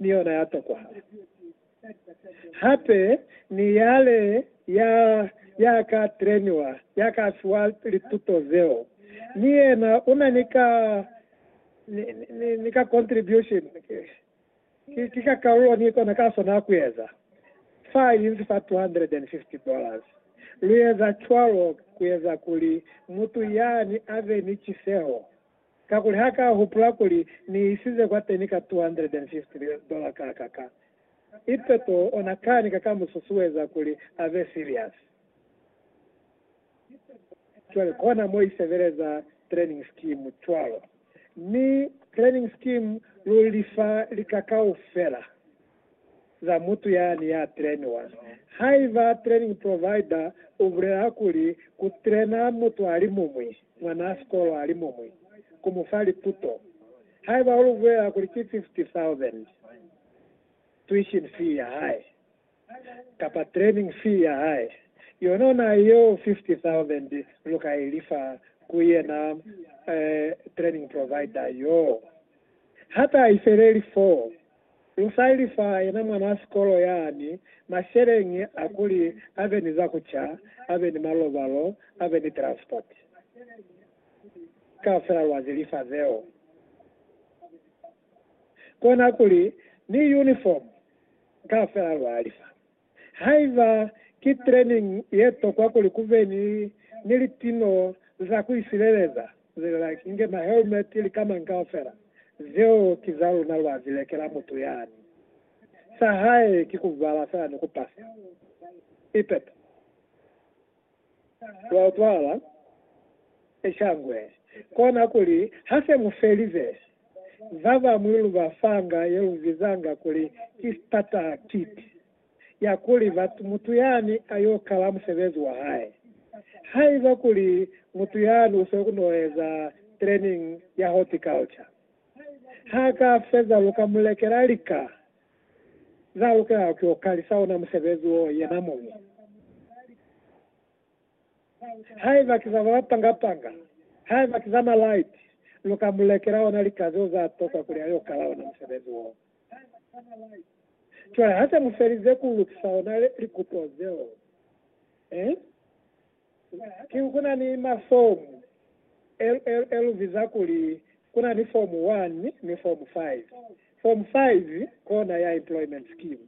ni yona ya tokwala. Hape ni yale ya, ya ka treniwa, ya ka fiwa lituto zeo, ni yena una ni ka, ni, ni, ni ka contribution, ki, ki, ki ka kalulo ni kona ka sona kueza. Fa inzi fa $250 dollars. Lueza cwalo kueza kuli mutu yani ave ni ciseho. Kakuli ha ka hupula kuli ni isize kwateni ka $250 kakaka. Ipe to ona kani ka ka mu susueza kuli a be serious. Cwale kona mo i sebeleza training scheme cwalo. Mi training scheme lu lifa lika kaufela. za mutu yani ya trainiwa. Haiba training provider u bulela kuli ku traina mutu a li mumwi, mwanaa sikolo a li mumwi, ku mu fa lituto, haiba u lu bulela kuli ki 50,000 tuition fee ya hae, kapa training fee ya hae, yona na yeo 50,000 lu ka i lifa ku yena training provider yoo, ha ta i feleli foo. Insa ili fa yena mwanaa sikolo yani, masheleñi a kuli abe ni za kuca, abe ni malobalo, abe ni transport. Kaufela lwa zi lifa zeo. Kona kuli ni uniform, kaufela lwa lifa. Haiba ki training ye tokwa kuli kube ni ni litino za ku isileleza, zilela ki nge ma helmet li kamañi kaufela. Zeo ki za luna lwa zi lekela mutu yani. Sa hae ki ku bala fela ni ku pasa. Ipepe. Lwa utwala se shangwe, kona kuli ha se mu felize, ba bañwi lu ba fanga ye lu bizanga kuli ki starter kit, ya kuli mutu yani a y'o kala musebezi wa hae. Haiba kuli mutu yani u s'o n'o eza training ya horticulture, ha ka feza lu ka mu lekela lika Za lukelaho ki ku kalisa ona musebezi wo yena muñwi. Haiba ki za ba panga-panga, haiba ki za malaiti, lu ka mu lekela ona lika zeo za tokwa kuli a yo kala ona musebezi wo. Cwale ha se mu felize ku lukisa ona likuto zeo, eh? Ki ku na ni mafomu LL lu biza kuli ku na ni Fomu 1 ni Fomu 5. Fomu 5 kona ya Employment Scheme,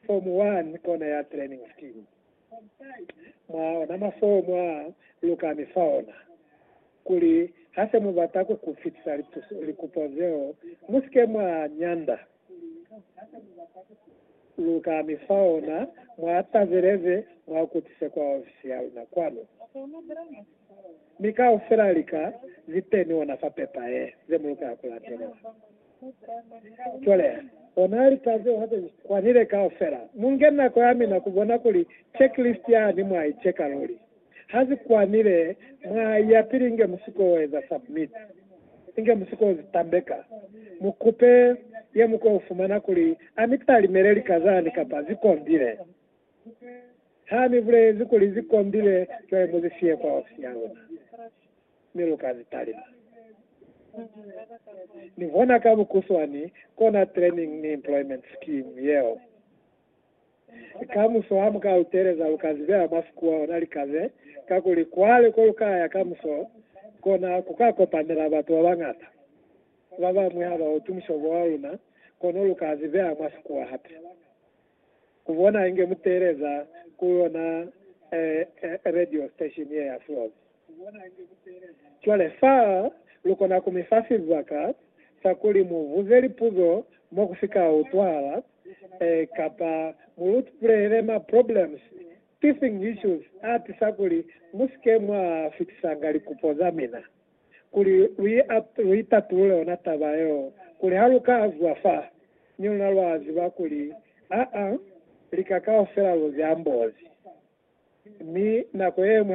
Fomu 1 kona ya Training Scheme. Mwa ona mafomu a lu ka mi fa ona, kuli ha se mu bata ku ku fitisa likupo zeo, mu si ke mwa nyanda. Lukani faona mwa tazeleze mwa kutise kwa ofisi ya luna kwanu. Mi kaufela lika ziteni ona fa pepa ye, ze mulukela kulatelela. Cwale, ona lika zeo hape zi kwanile kaufela. Munge nako yamina kubona kuli checklist yani mwa i cheka luli. Ha si kwanile mwa ya pili inge mu si ko eza submit, inge mu si ko zi tambeka. Mu kupe ye mu ko fumana kuli a mi talimele lika zani kapa zi kondile. Ha mi bulezi kuli zi kondile, cwale mu zi fiye kwa ofisi ya luna, mi lu ka zi talima. Ni hona ka bukuswani kona training ni employment scheme yeo. Kamuso ha mu ka lu teeleza, lu ka zibeha mwa sikuwa ona lika ze, kakuli kwale ko lu ka ya kamuso, kona ku ka kopanela batu ba bañata. Ba bañwi ha ba utwi mushobo wa luna, kono lu ka zibeha mwa sikuwa hape. Ku bona inge mu teeleza ku yona radio station ye ya Flozi. Cwale fa lukona ku mi fa sibaka sa kuli mu buze lipuzo mo ku si ka utwahala, ee, kapa mu lutpulele ma problems, teething issues, a tisa kuli mu si ke mwa fitisanga likupo za mina, kuli lu i, lu i tatulule ona taba yeo, kuli ha lu ka zwa fa, mi luna lwa ziba kuli, aa, lika kaufela lu ziambozi. Mi nako yeñwi ha lu.